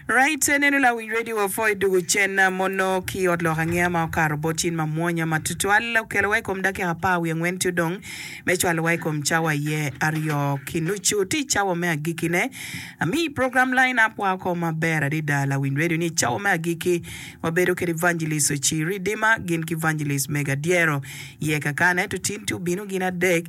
Rayte neno lawic redio wa pho i dugu cen mono ki i ot lok angeya ma okato bot cin ma mwonya ma tutwal. Okelo wa i kom dakika apar wiye angwen ci odong me cwalo wa i kom cawa aye aryo ki nucu. Ti cawa me agiki ne ami program Line Up wa oko ma ber adida. Lawiny redio ni i cawa me agiki wa bedo kede Evangelist Ocii Ridima gin ki Evangelist Mega Dyero. Iye kakane tutinti obino gin adek.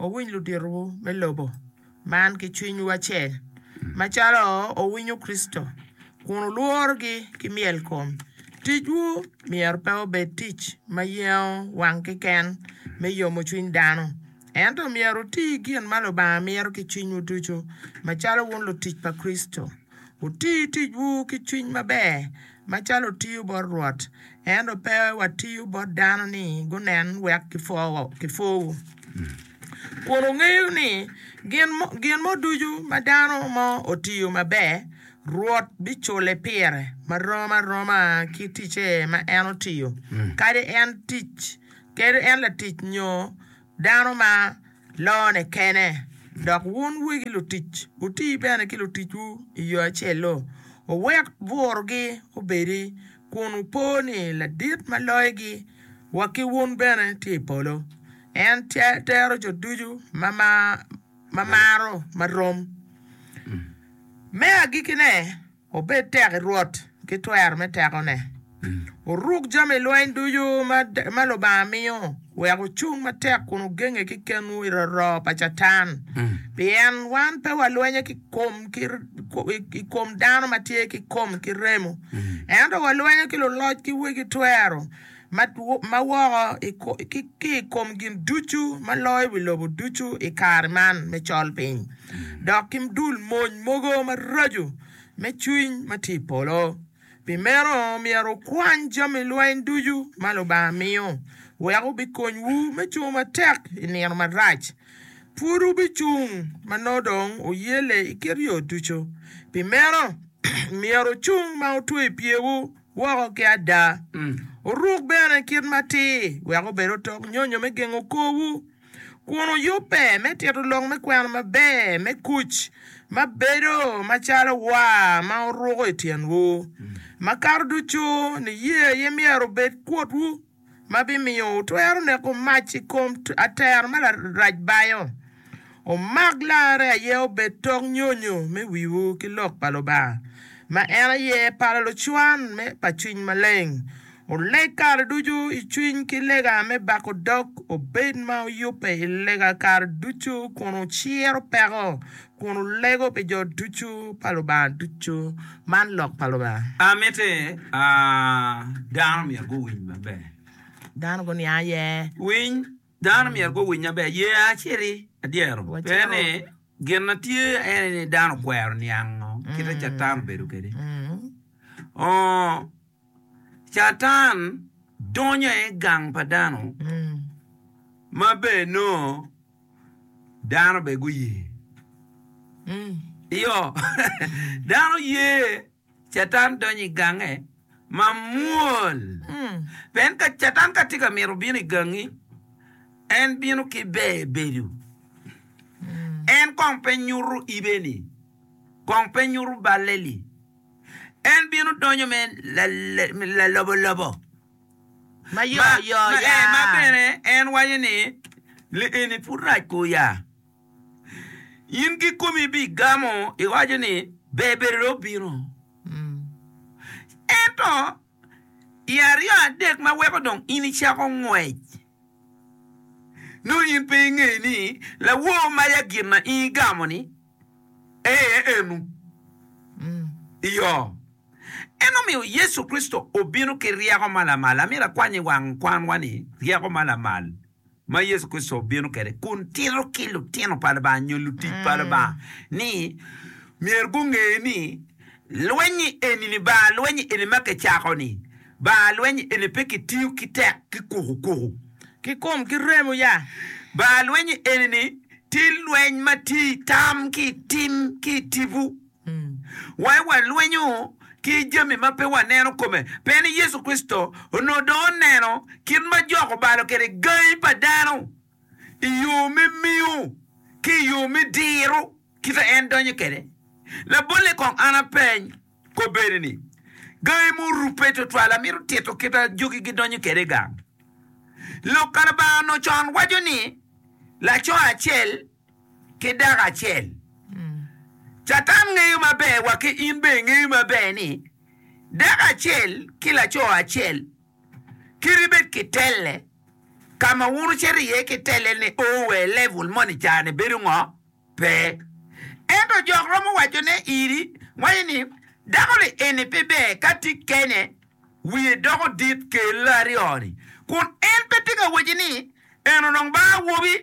Wuwiny luditwu me lobo man ki cwinywu acel, macalo wuwinyo Kricito, kun wulworogi ki myelkom. Ticwu myero pe obed tic ma yengo wang keken me yomo cwiny dano, ento myero wuti gin ma Lubanga mito ki cwinywu ducu, macalo wun lutic pa Kricito. Wuti ticwu ki cwiny maber macalo wutiyo bot Rwot, ento pe watiyo bot dano ni gunen wek gipwowu. Kun wungeyo ni gin mo ducu ma dano mo otiyo maber, Rwot bicule pire ma rom aroma ki ticce ma en otiyo, kadi en latic nyo dano ma. lone kene, dok wun wegi lutic wuti bene ki luticwu i yo acel-lu. Wuwek burogi obedi, kun wupo ni Ladit ma loyogi wa ki wun bene tye i polo. En tero jo ducu ma maro ma rom. Me agikkine. Obed tek i Rwot ki twer me tekone. Oruk jami lweny ducu ma Lubanga miyo, wek ocung matek kun ogenge ki kenwu i roroo pa Catan. Pien wan pe walwenyo i kom dano ma tye ki kom ki remo, ento walwenyo ki luloc ki wegi twero, ma woko ki i kom gin ducu ma loyo i wi lobo ducu i kare man me colpiny, dok ki dul mony mogo maraco me cwiny ma tye i polo. Pi meno, myero wukwany jami lweny ducu ma Lubanga miyo, wek obikonywu me cung matek i nino marac. Pud wubicung ma nongo dong wuyelle i kit yo ducu. Pi meno, myero wucung ma wutweyo pyewu. woko ki ada. Wuruk bene kit matir wek obed otok nyonyo me gengo korwu, kun wuyubbe me tito lok me kwena maber me kuc ma bedo macalo waa ma wuruko i tyenwu. Makato ducu, niye aye myero obed kutwu. ma bimiyo wutwero neko mac i kom atero ma larac bayo. Wumak larre aye obed tok nyonyo me wiwu ki lok pa Lubanga, ma en aye pala lucwan pa Cwiny Maleng. Wuleg kare ducu i cwiny ki lega me bako dog, wubed ma wuyubbe i lega kare ducu kun wuciro peko Kun wulego pi jo ducu pa Lubanga ducu. Man lok pa Lubanga. A Mitte a dano myero guwiny maber. Dano guniang aye. Winy, Dano myero guwiny maber. Ye acel i adyero pe ni gin ma tye aye ni dano okwero niango kite Catan obedo kwede. Oo. Catan donyo i gang pa dano ma bene nongo dano bene guye. Iyo, dano ye Catan donyo i gange mamwol. Pien ka Catan ka tye ka mito bino i gangi, en bino ki ber bedo. En kong pe nyuto ibe-ni, kong pe nyuto balle-ni. En bino donyo me lalobolobo, ma bene en waco ni, Li eni pud rac ka oya. In kikomi ibigamo, iwaco ni, 'Ber bedo dong obino. Ento i aryo adek ma weko dong in icako ngwec. Nongo in pe ingeyo ni lawor maya gin ma in igamo-ni aye enu? Iyo, en omiyo Yecu Kricito obino ki ryeko ma lamal. Amito akwany i wang kwanwa ni ryeko ma lamal ma Yecu Kricito obino kwede kun tito ki lutino pa Lubanga nyo lutic pa Lubanga ni myero gunge ni, Lweny-nyi eni-ni, bar lweny eni ma kicako-ni, bar lweny eni pe kitiyo ki tek ki kukukuku, ki kom ki remo ya. Bar lweny eni-ni tye lweny ma tye i tam ki i tim ki i tipo. Wa i walwenyo ki jami ma pe waneno kome. Pe ni Yecu Kricito onongo dong oneno kit ma jok obalo kwede gangi pa dano i yo me miyo ki i yo me diro kite en donyo kwede. Labolle kong an apeny kobbe-ni-ni, Gangi murubbe twatwal amito tito kit ma jogi gidonyo kwede i gang. Lok ka Lubanga onongo con waco ni laco acel ki dako acel. Catan ngeyo maber wa ki in bene ingeyo maber ni dako acel ki laco acel. Kit ibed ki telle. Ka ma wun wucito iye ki telle-ni oo wa i level moni i caa-ni bedo ngo? Pe. Ento jok romo wacone iri, waco ni, Dako-ni eni pe ber ka tye kene, wiye doko dit, kelle aryo-ni. Kun en pe tye ka waci ni, En onongo ba awobi.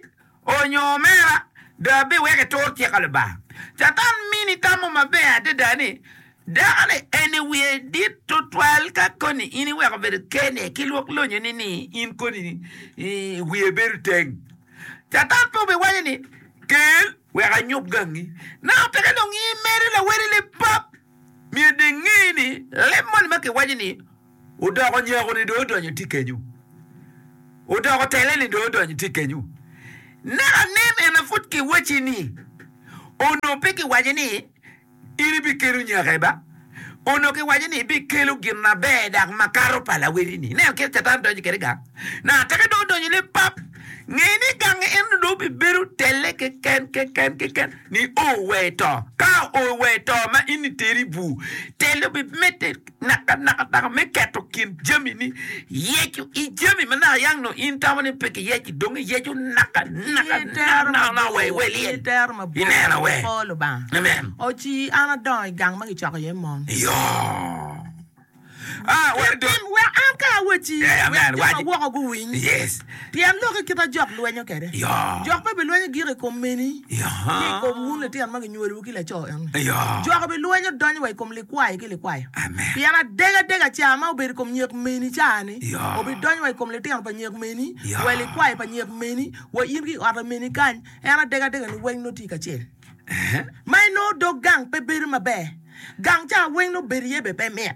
Onyo omera, do abiweko itur cik a Lubanga? Catan mini tamo maber adada ni dako-ni en i wiye dit tutwal ka koni in iweko bedo kene ki lwok lonyoni ni in koni i wiye bedo teng. Catan pe obiwaco ni, Kel, wek anyub gangi. Naka peke dong in imedo laweli lipap? Myero dong inge ni leb moni ma kiwaco ni Odoko nyeko-ni dong odonyo itye kenyu, odoko tele-ni dong odonyo itye kenyu. Naka anen en aye pud kiwacci-ni, onongo pe kiwaco ni in ibikelo nyeke ba? Onongo kiwaco ni ibikelo gin maber dok makato pa laweti-ni. Inen kit Catan donyo kwede gang. Naka tika dong odonyo ni pap, nge ni gangi eno dong bibedo tele keken keken keken nio wee to. Ka oo wee to ma in iteri i bur, tele obimedde. Nakanaka dok me keto kin jamini, yecu i jami ma naka yang nongo in itamo ni pe kiyeco, dong iyeco nakanaka. Ki tero mabor, ki tero mabor i kor Lubanga. O ci, an adongo i gang ma kicoko iye mon. Kitim wek an kaya wacci, wek jo ma woko guwiny. Pien lok i kite jok lwenyo kede, jok pe bilwenyo giko i kom meni, ki i kom wun litino ma ginywolowu ki laco eno. Jok bilwenyo donyo wa i kom likwayo ki likwayo, pien adegadega ca ma obedo i kom nyek meni ca-ni obidonyo wa i kom litino pa nyek meni, wa i likwayo pa nyek meni, wa in ki i ote meni kany, en adegadega niweng nongo tye kacel. Ma inongo dog gang pe bedo maber, gang ca weng nongo bedo iye bene pe mit.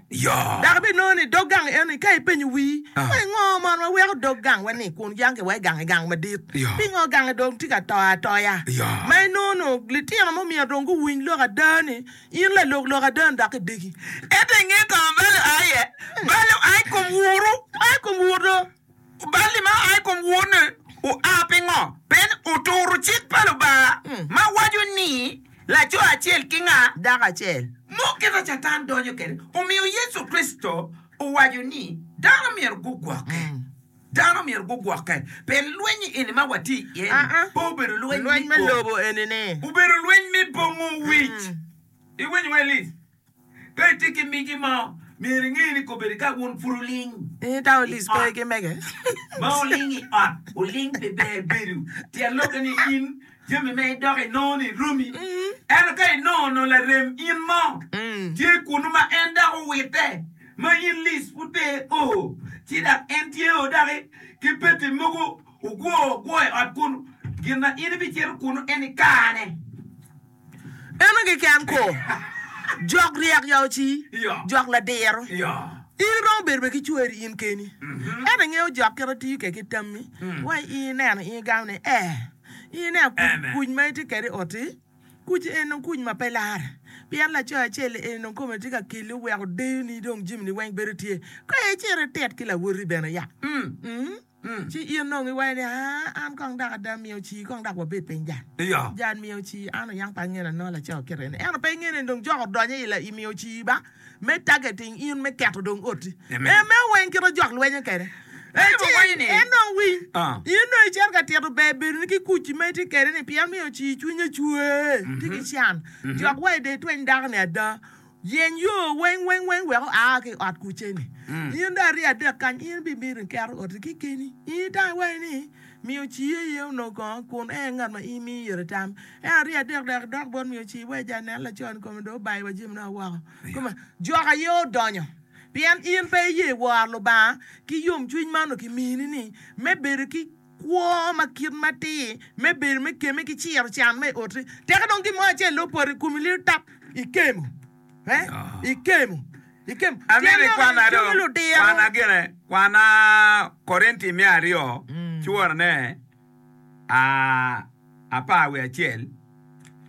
Dok ibinongo ni dog gang enoni ka ipenyo wii ni ngo mono ma weko dog gang wa ni kun yange wa i gang i gang madit? Pingo gange dong tye ka to atoya? Ma inongo nongo litino mo myero dong guwiny lok ada ni in lalok lok ada ni dok idegi. Ento inge kama balo aye? Balo aye i kom wuru. Aye i kom wuru do. Oballi ma oa i kom Wonne oa pingo? Pien oturo cik pa Lubanga ma waco ni, Laco acel ki nga? Dako acel? Mo kit ma Catan donyo kwede omiyo Yecu Kricito owaco ni dano myero gugwokke. Dano myero gugwokke pien lweny eni ma watye iye ni pe obedo lweny me lobo, obedo lweny me bongo wic. Iwinyo, Alice? Ka itye ki miti mo, myero inge ni kobedi ka wun pud wuling ma wuling i ot, wuling pi ber bedo. Tyen lokke ni in jami ma idoko inongo ni romi. Ento ka inongo onongo larem in mo tye kunnu ma en dok owitte ma in lic pud pe o, ci dok en tye o doki ki peti mogo ogwo ogwo i ot kunnu, gin ma in ibicito kunnu en ikane. Eno keken ko, jok ryek ya oci, jok ladiro. In iromo bedo bene ki cweri in keni, ento ingeyo jok kit ma tiyo kwede ki tammi wa i ineno in igamo ni ee, in ineno kuc ma itye kwede i ot-ti, kuc eni dong kuc ma pe lar, pien laco acel-li eni dong kome tye ka keli oweko deyoni dong jamini weng bedo tye. Kono icit itit ki lawoti bene ya. Ci in dong iwaco ni, Aa, an kong dok ada mi oci, kong dok wabed piny jang. Jang mi oci, an oyang pa angene anongo laco akete ni. Ento pe ingene ni dong jok odonyo i mi oci ba me targeting in me keto dong oti. Emmeo weng kit ma jok lwenyo kede. Ecing, en dong winy. In dong icito ka tito ber bedoni ki kuc ma itye kede ni pien mi oci cwinye cwer, tye ki can. Jok wa i de tweny dako ni ada. Yeny yo weng weng weng wek oa ki i ot kuceni. In dong arye adek kany, in bimito in keto oti kekeni. In itamo iwaci ni, Mi oci aye onongo kongo, kun en aye ngat ma in miyo ite tam. Ento arye adek dok idok bot mi oci iwec ja nen laconi kome dong obayo wa jami nono woko. Kome, Jok aye odonyo. Pien in pe iye woro Lubanga ki yomcwiny ma onongo kimini-ni, me bedo ki. Kwo ma kit matir me bedo me kemme ki ciro can ma i oti. Tika dong gin mo acel ni opoto i komi liro tap? Ikemo. Ikemo. Ikemo. Tyen lok eni, Cungo ludiro. Kwana Korinti me aryo cworone a. apar wiye acel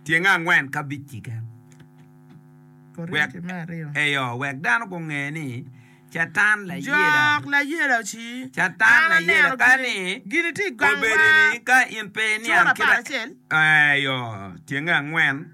tyenge angwen ki abic keken, eyo, wek dano gunge ni Catan layela, Jok layela ci, Catan layela ka ni obedi ni ka in pe iniang kit, eyo, tyenge angwen.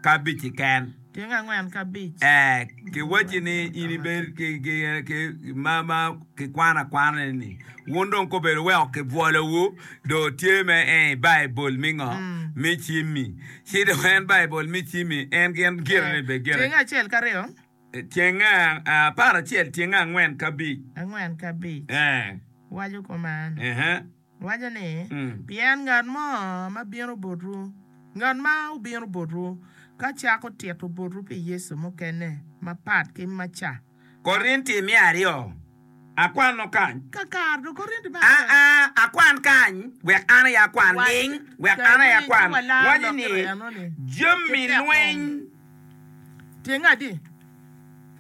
kabic-ci ken. Tyeng angwen kabic. Ee, kiwacci ni in ibed ki, ki, ki ma, ma kikwano akwana-ni. Wun dong kobedi oweko kibwolowu, dong tye me ee i Baibul mi ngo? Mi Cimmi. Ci dong en Baibul mi Cimmi, en gin gire ni bed gire. Tyeng acel ki aryo. Tyeng apar acel, tyeng angwen kabic. Angwen kabic. Ee. Waco koma en. Ehe. Waco ni, Pien ngat mo ma bino botwu, ngat ma obino botwu, ka cako tito botwu pi Yecu mukene mapat ki ma ca. Korinti me aryo, Akwano kany. Kakar dong Korinti me aryo. Aa, akwan kany, wek an aye akwan ling, wek an aye akwan. Waco ni, Jami lweny. Tyenge adi?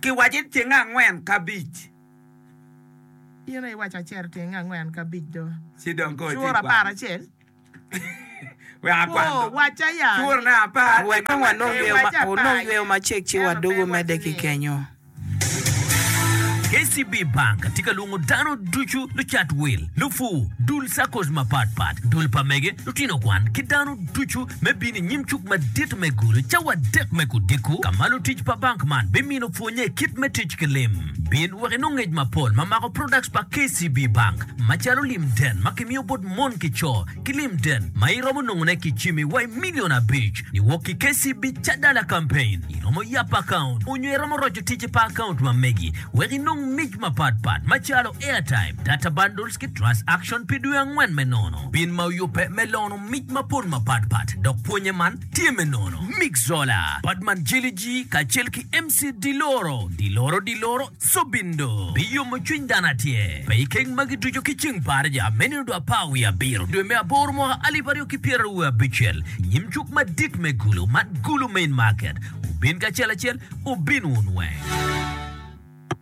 Kiwaco ni tyenge angwen ki abic. Pire iwaco acel tenge angwen ki abic do, curo apar acel kwoo wacca ya ni wek dong wanong yweyo macek ci wadwogo medde ki kenyo. KCB Bank tye ka lwongo dano ducu, lucat wil, lupur, dul saccos mapat pat, dul pa mege, lutino kwan, ki dano ducu me bino i nyim cuk madit me Gulu cawa adek me Kudiko ka ma lutic pa bank man bimino pwonnye kit me tic ki lim. Bin wek inong ngec mapol ma mako products pa KCB Bank macalo lim den ma kimiyo bot mon ki co ki lim den ma iromo nongo ne ki cimi wa i million abic ni wok ki KCB Cadala Campaign. Iromo yap account onyo iromo roco ticce pa account ma megi wek inong mic mapat pat macalo airtime, data bundles ki trust action pi dwe angwen me nono. Bin ma oyubbe me lono mic mapol mapat pat dok pwonye man tye me nono. Mick Zola, Padman Jiliji kacel ki MC. Ci di loro, di loro, di loro, Sobindo biyomo cwiny dano atye pe i keng magi ducu ki ceng paraja me nino dwe apar wiye abiro dwe me aboro mwaka alip aryo ki pyeraru abicel i nyim cuk madit me Gulu man Gulu main market wubin kacel acel wubin wunweng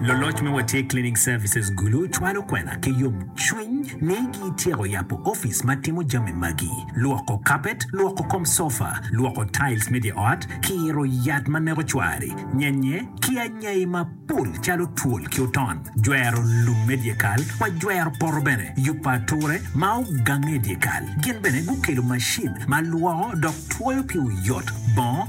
Loloc me Watye Cleaning Services Gulu cwalo kwena ki yomcwiny ni gityeko yabo office ma timo jami magi, lwoko kapet, lwoko kom sofa, lwoko tiles me dye ot, kiro yat ma neko cwari, nyenye, ki anyai mapol calo twol ki oton, jwero lum me dyekal wa jwero poto bene, yubo ature ma ogange i dyekal. Gin bene gukelo macin ma lwoko dok twoyo pi oyot bongo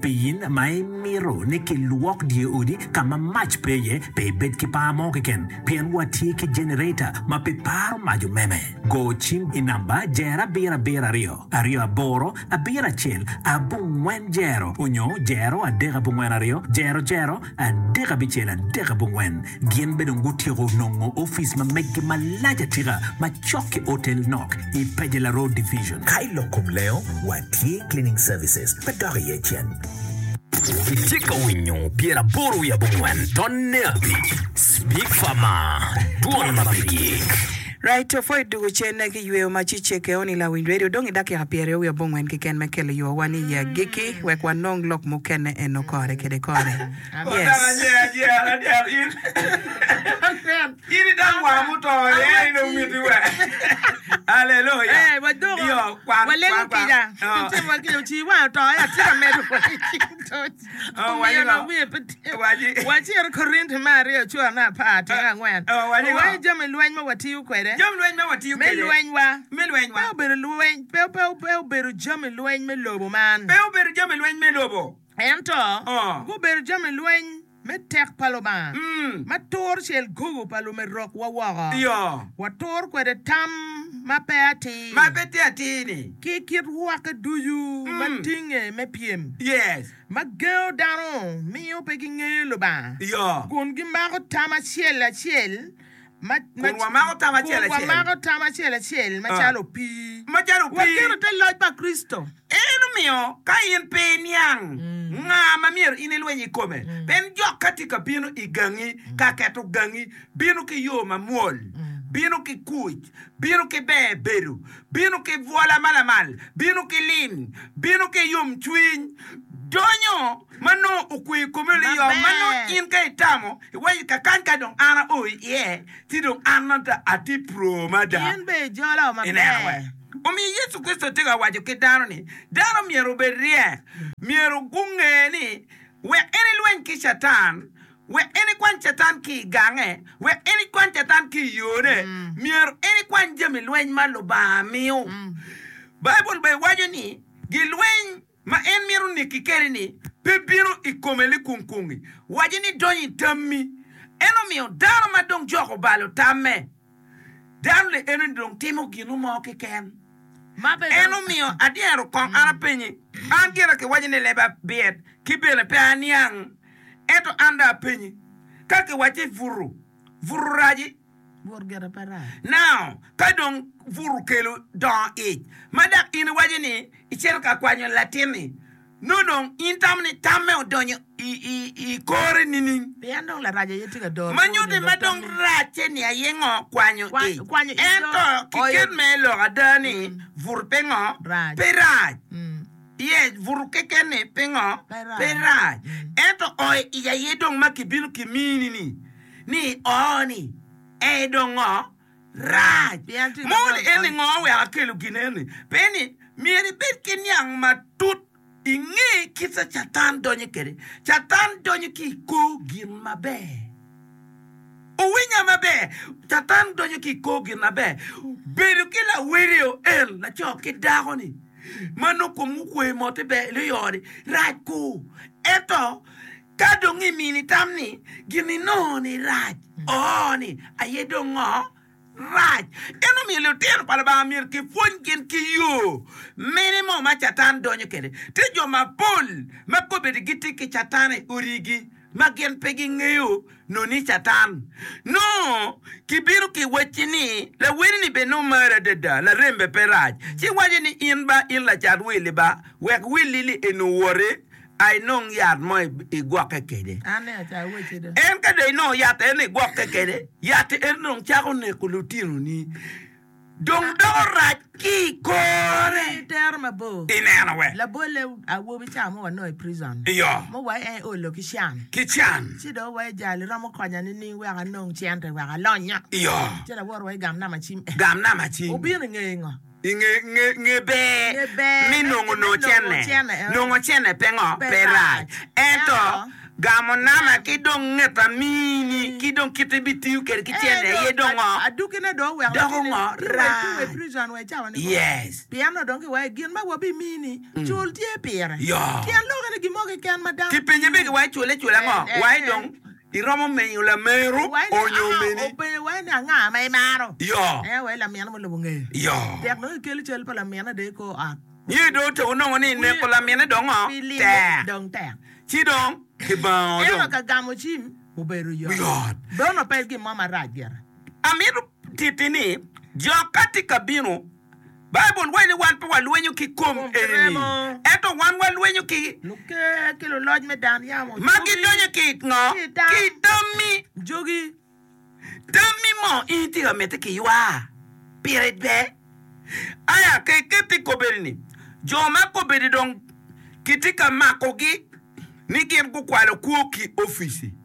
Pien ma imito ni kilwok dye odi ka ma mac pe iye, pe ibed ki par mo keken, pien watye ki jenereta ma pe paro mac omeme. Go cim i namba jero abiro abiro aryo, aryo aboro, abiro acel, abongwen jero, onyo jero adek abongwen aryo, jero jero, Adek abicel, adek abongwen, gin bene dong gutyeko nongo ofice ma meggi malac atika ma cok ki otel nok i Pajela Road Division. Ka i lok kom lengo, watye Cleaning Services ma dok iye cen. Itye ka winyo Pyera Aboro wiye Abongwen Tonne Abic, Speak Far Mar, Dwon ma pe gik. Rai Tofo i tugo cene ki yweyo ma ci ceke on i Lawiny Radio dong i dakika pyeraryo wiye abongwen keken me kelo yo wa ni i agikki wek wanong lok mukene eno kore kede kore. Yes. Omiyo lok wiye pe tye. Wa ci ito Korinti me Aryo cura me apar tyeng angwen. Owaco ni jami lweny ma watiyo kwede me lwenywa pe obedo jami lweny me lobo man, ento gubedo jami lweny me tek pa Lubanga ma turo cel gogo pa lumerokwa woko. Waturo kwede tam ma pe atir. ki kit rwakke ducu ma tinge me pyem ma gengo dano miyo pe gingeyo Lubanga, kun gimako tam acel acel macalo opii wa kene te loc pa Kricito. Eno miyo ka in pe iniang nga ma myero in ilweny i kome, pien jok ka tye ka bino i gangi ka keto gangi bino ki yo mamwol, bino ki kuc, bino ki ber bedo, Bino ki bwola ma lamal, bino ki lim, bino ki yomcwiny, donyo ma nongo okwe i komi liyo, ma nongo in ka itamo iwaco ni kakany ka dong an ao iye, ci dong an atye puro mada. In bene ijolo maber. Omiyo Yecu Kricito tye ka waco ki dano ni dano myero obed ryek, myero gunge ni wek en elweny ki Catan, Wek en ikwany Catan ki i gange, wek en ikwany Catan ki i yone, myero en ikwany jami lweny ma Lubanga miyo. Baibul bene waco ni gilweny ma en mito neki kwede-ni pe bino i kome likunkungi, waco ni donyo i tammi. En omiyo dano ma dong joko balo tamme. Dano ni eno-ni dong timo ginu mo keken. En omiyo adyero kong an apenye. An gira kiwaco ni leba byet, ki bene pe aniang. Ento an dong apenyi, ka kiwacci butu, butu raci? Butu gire pe rac. Nao, ka dong butu kelo dongo ic, ma dok in iwaco ni icito ka kwanyo latin-ni, Nongo dong in tamo ni tamme odonyo i kore nining? Ma nyutti ma dong racce-ni aye ngo kwanyo ic. Ento ki ket me lok ada ni buto pingo pe rac? Iye, buto keken-ni pingo pe rac? Ento oyo ic aye dong ma kibino kimini-ni, ni oo-ni, ee dong ngo? rac. Moni eni ngo wek akelo gin eni? Pe ni myero ibed ki niang matut inge kica Catan donyo kede. Catan donyo ki i kor gin maber. Wuwinya maber, Catan donyo ki i kor gin maber. Bedo ki lawedio en laco ki dako ni ma nongo komgi okwe mote ber i ot ni rac ku. Ento. Ka dong imini tam ni, Gin inongo-ni rac, oo ni, aye dong ngo? Rac. Eno miyo lutino pa Lubanga myero kipwony gin ki yo mene mo ma Catan donyo kwede. Tye jo mapol ma kobedi gitye ki Catan i odigi ma gin pe gingeyo noni Catan. Nongo kibino ki wacci ni, Laweni-ni be nongo mari adada, larembe pe rac, ci wace ni, In ba in lacat wili ba, wek wilili eni owoti, a inong yat mo igwokke kwede. En ka dong inongo yat eno igwokke kwede, yat eno dong cako neko lutinoni, dong doko rac ki i kore. Ineno we? Iyo. Ki can. Iyo. Gam namba cim. I nge nge ber me nongo nongo cene, nongo cene pe ngo pe rac, ento gamo nama ki dong nget amini ki dong kit ibitiyo kwede ki cene aye dong ngo doko ngo rac yes yoo kipenye bene kiwaco cule cula ngo waci dong Iromo miyo lameru onyo omini? Yo. Niye dong otyeko nongo ni neko lamine dong tek, ci dong kibango dong. Amito titi ni, jo ka tye ka bino. Baibul waco ni wan pe walwenyo ki kom eni, ento wan walwenyo ki luker ki luloc me dan yamo ma gidonyo ki i ngo? Ki i tammi. Jogi tammi mo in ityeka ka mitte ki ywa pire dwe? Aya ka iketo i kobedi ni, jo ma kobedi dong kitye ka makogi ni gin gukwalo kwo ki opici.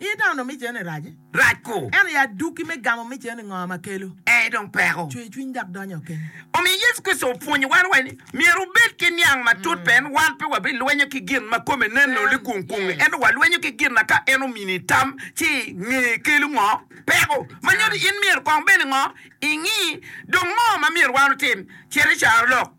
I dano mic eni rac. Rac ku. Eno ya duki me gamo mic eni ngo ma kelo. Ee dong peko. Cwe cwiny dok donyo o keni. Omiyo Yecu Kricito opwonyo wan wai ni myero wubed ki niang ma tut pien wan pe wabi lwenyo ki gin ma kome nen nongo ni kung kungi ento wa lwenyo ki gin na ka en omini tam ci i nge kelo ngo peko ma nyuto in myero kong bene ngo ingi dong ngo ma myero wan otim cito i caro lok.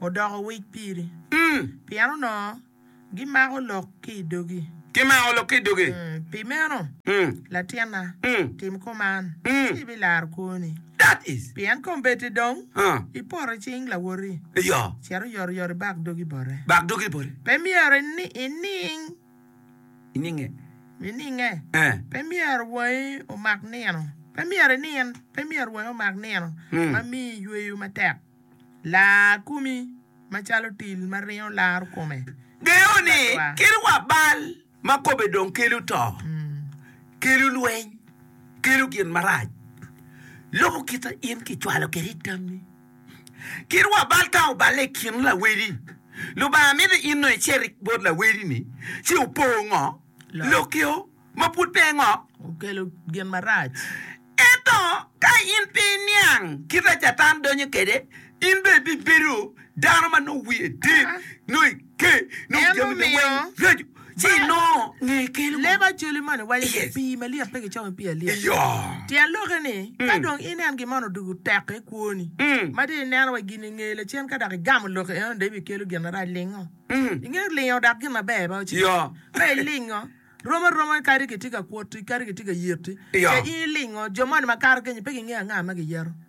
odoko wic piri, pien onongo gimako lok ki i dogi. Pi meno, latinna, tim kuman, ci ibilar kwoni, pien kombeddi dong ipoto i cing lawoti, cito oyotoyot ibak dogi bote. Pe myero ining Ininge. Ininge. Eh. Pe myero wangi omak nino. Pe myero inin. Pe myero wangi omak nino ma miyo iyweyo matek. Lar komi macalo til ma ringo laro kome. Geyo ni kit wa bal ma kome dong kelo to, kelo lweny, kelo gin marac, loko kite in kicwalo kwede i tammi. Kit wa bal ka oballe i kin lawedi, Lubanga mito in dong icer bot lawedini ci opo ngo lokio ma pud pe ngo okelo gin marac. Ento ka in pe iniang kit a Catan donyo kwede, in dong ibibedo dano ma nongo wiye dit. En omiyo leb Acholi moni waco ni, Pii malyet pe gicomo i pii alyet. Tyen lokke ni, ka dong ineno gin moni odwogo teko i kwoni, ma dong ineno wa gin i nge lacen ka dok igamo lokke enoni dong ibikelo gin marac, lingo. Ingeyo lingo dok gin maber ba ocito. Ka ilingo, rom aroma kadi kitye ka kwoti, kadi kitye ka yeti, ce in ilingo. Jo moni makato kenyo pe gingeyo anga ma giyeto.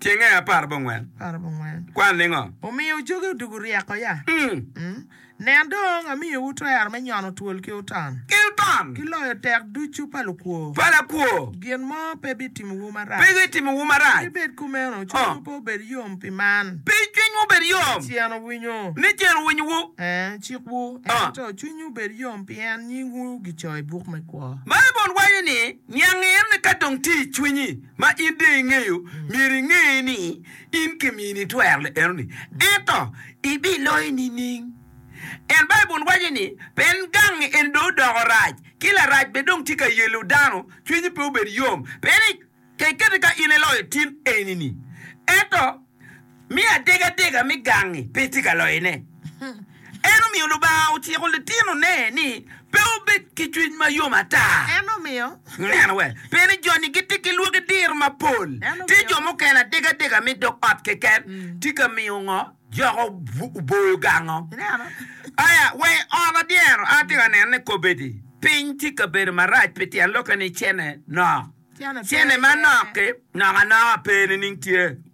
Cenge apar bongwen kwan ningo? Omiyo coge odugo ryeko ya? Mm. Nen dong, amiyowu twero me nyono twol ki otan. Gilbam. Ki loyo tek ducu pa lukwo. Pa lakwo. Gin mo pe bitimowu marac. Pe bitimowu marac. Ki bed kumeno, Oh. cwinywu pe obed yom pi man. Pi cwinywu obed yom. Ni cen owinyo. Ni cen owinyowu. Eh, cikwu, Oh. ento cwinywu obed yom pien nyingwu gicoyo i buk me kwo. Baibul waco ni, Niang en ka dong tye i cwinyi. Ma in dong ingeyo, myero inge ni in kimini twero lok eno-ni, ento ibiloyo nining? En, Baibul waco ni, pe en gang eni dong odoko rac, ki larac bene dong tye ka yelo dano, cwinyi pe obed yom, pien ni ka ikette ka in iloyo tin eni-ni, ento. Me adegadega me gangi pe tye ka loyone. En omiyo Lubanga ociko litinone ni pe obed ki cwiny ma yom ata. En omiyo. Neno wek pe ni joni gitye ki lwaki diro mapol. Tye jo mukene adegadega me dog ot keken tye ka miyo ngo joko oboyo gango. Aya wa i ot adyero, atye ka neno ni kobedi piny tye ka bedo marac pi tyen lokke ni cene nok. Cene manok-ki nok anoka pe nining tye.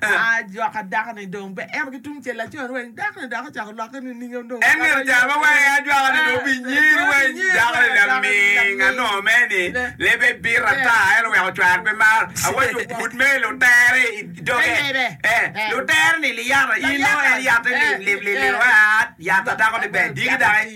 Ajok adako ni dong pe en ki tung cel lacon weng, dako ni dok ocako lokke nining en dong. En myero oca ma wange ajwaka ni dong pi nyir weng, dako ni laming anongo mere ni lebe bit ata ento wek ocwar pe mar, awaco pud mere lutere i doge, eh, lutere ni liyata in nongo en yatte lim lim lim lim, ah, yatta dako ni ber diki daki.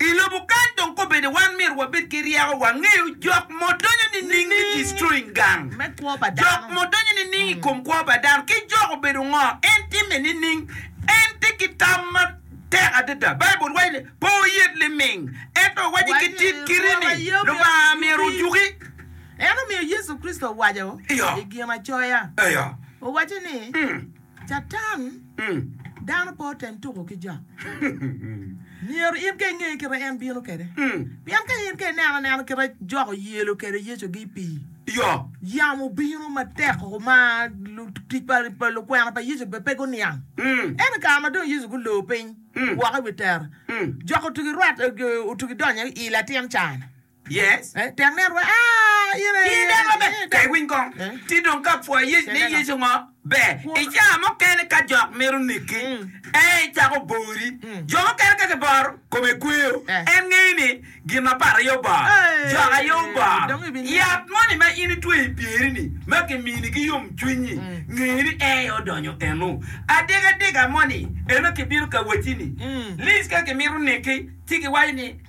I lobo kany dong kobene wan myero wabed ki ryeko wa ngeyo jok mo donyo nining me destroying gang me kwo pa dano, jok mo donyo nining i kom kwo pa dano ki jok obedo ngo en time nining en tye ki tam ma tek adada Baibul waco ni pe oyet liming ento owaci ki tit kiti ni Lubanga myero ojuki. Ento omiyo Yecu Kricito owaco Iyo. i Ginacoya Iyo. owaco ni. Catan, dano pe otem tuko ki jo. Myero in ka inge kite en bino kede. Pien ka in ka ineno anena kite jok oyelo kede Yecu gi pii. Yo. Yamo obino matek o ma lutic pa pa lukwena pa Yecu be pe guniang. Ento kare ma dong Yecu gulor piny woko i wi tera, jok otugi rwat otugi donyo i latin can. Ki dok maber ka iwiny kong ci dong ka pwoyi yec ni Yecu ngo ber. I caa mukene ka jok mito neki, ee icako bori. Jo mukene ka giboro, kome kweyo. En ngeyo ni gin mapat aye oboro, jok aye oboro. Yat moni ma in itweyo i pyeri-ni ma kimini ki yomcwiny-nyi, nge ni en aye odonyo eno. Adega dega moni, eno kibino ka wacci ni, Lic ka kimito neki, ci giwaco ni,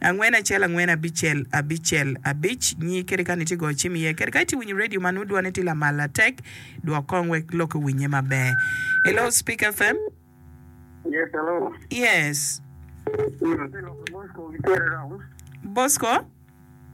angwen acel angwen abicel abicel abic nyi kadi kani itye goyo cim iye kadi ka itye winyo radio ma nongo dwone tye lamal latek dwok kong wek lok owinye maber hello speaker fm Yes, hello. yes Atye lok i Bosco ki Terry Rounds. bosco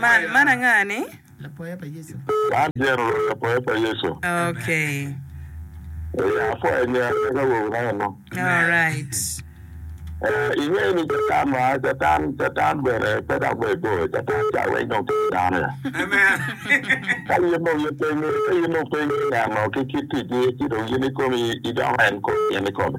Man, man anga ni? Lapoya pa Yecu. Man General lapoya pa Yecu. Okay. Ee, apwoye nya kit awobi-na eno. Alright. Ee, ingeyo ni Catan ma, Catan, Catan bene pe dok ber bor. Catan ca weng dong tye ki dano ya. Ka in dong ipenye, ka in dong ipenye neno ki kit ticgi, ci dong in ikomi idoko en kome, in ikomi.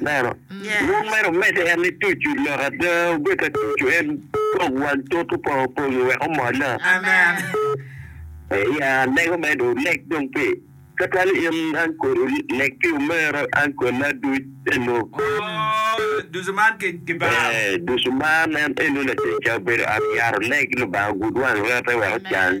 Neno, lwak mere omedde en ni tucu, lok ada obed ka tucu en kok wang tut opongo pongi wek omol na. Ya lego mere dong oleg dong pi tutwale in ankol oleg pi omero ankol na duc te lub. Ee ducu man en eno latic ka obedo ot yat oleg lubanga ogud wang rete wek ocang.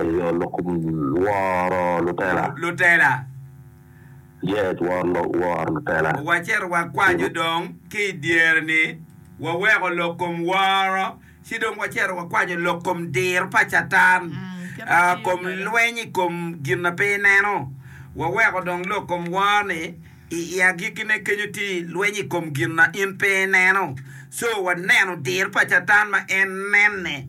Eyo, lok kom woro lutela. Lutela. Yes, woro, woro lutela. Wacito wakwanyo dong ki i dyere-ni, waweko lok kom woro, ci dong wacito wakwanyo lok kom diro pa Catan, aa, kom lweny i kom gin ma pe ineno. Waweko dong lok kom woro-ni i, i agikkine kenyo tye i lweny i kom gin ma in pe ineno. Co, waneno diro pa Catan ma en nenne.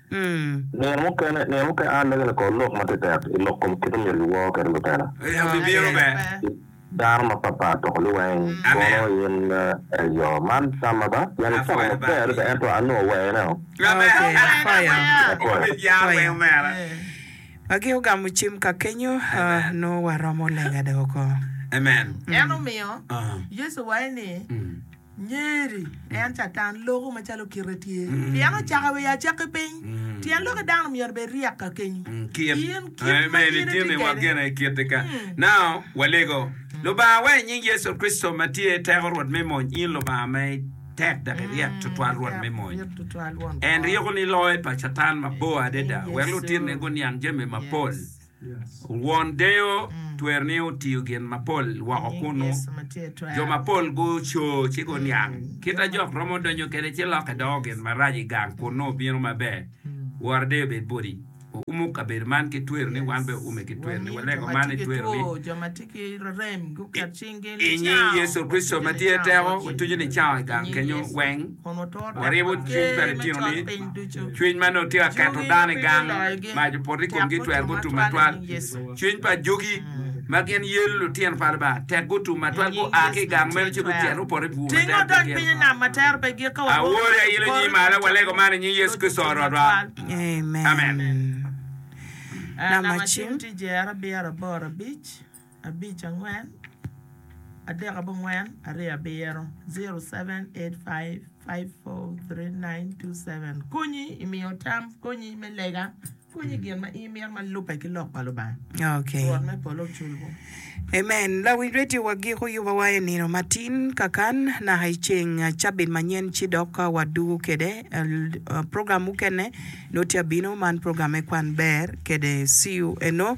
Nino mukene, nino mukene a lege lakor lok ma tetek i lok kom kit omyero giwor kwede lutela. I dano mapatpat dok liweng kono in ee yo man tamma ba? Pien wucako maber adada ento a nongo weyoneo. Wa gi ogamo cim ka kenyo, nongo waromo lega doko. Nyeri, en Catan loko macalo kite tye, pien ocako i wi acakki piny. Tyen loki dano myero obed ryek kakeny. Kit, In kit ma amen, in itye itino i wa kwede. gene i kit-ti ka. Now, walego. Lubanga wa, i nying Yecu Kricito ma tye teko Rwot me mony, in Lubanga ma itek dok iryek tutwal Rwot me mony, Iryek tutwal Won en Kwo. ryekoni loyo pa Catan mabor adada, In wek Yecu. lutitine guniang jami mapol. Yes. Won deyo twero ni otiyo gin mapol woko kunnu. Jo mapol gucoo ci guniang. Kit a jok romo donyo kwede ci lokke doko gin marac i gang kunnu bino maber. Woro deyo bed boti. Waumo kabedo man ki twero ni wan bene waume ki twero ni walego man i twero ni I nying Yecu Kricito ma tye teko, watuco ni cawa i gang kenyo weng. Waryebo cwiny pa litino-ni, cwiny ma nongo tye ka keto dano i gang, mac opoto i komgi, twer gutum matwal. Cwiny pa ajogi, ma gin yelo litino pa Lubanga, tek gutum matwal, gua ki i gang meno ci gucito gupoto i bur matek botgi. Awoto i ailo nyi malo, walego man i nying Yecu Kricito Rwotwa. Amen. abic angwen adek abongwen aryo abiro 0785543927 konyi i miyo tam konyi me lega konyi gin ma in imito ma lubbe ki lok pa Lubanga Okay. Rwot me polo oculwu. Amen. Lawiny radio wagiko yubawa i nino matin kakan naka i ceng ah, cabit manyen ci dok ah, wadugu kede ah, l- ah, program mukene no tye abino man program me kwan ber kede CU eno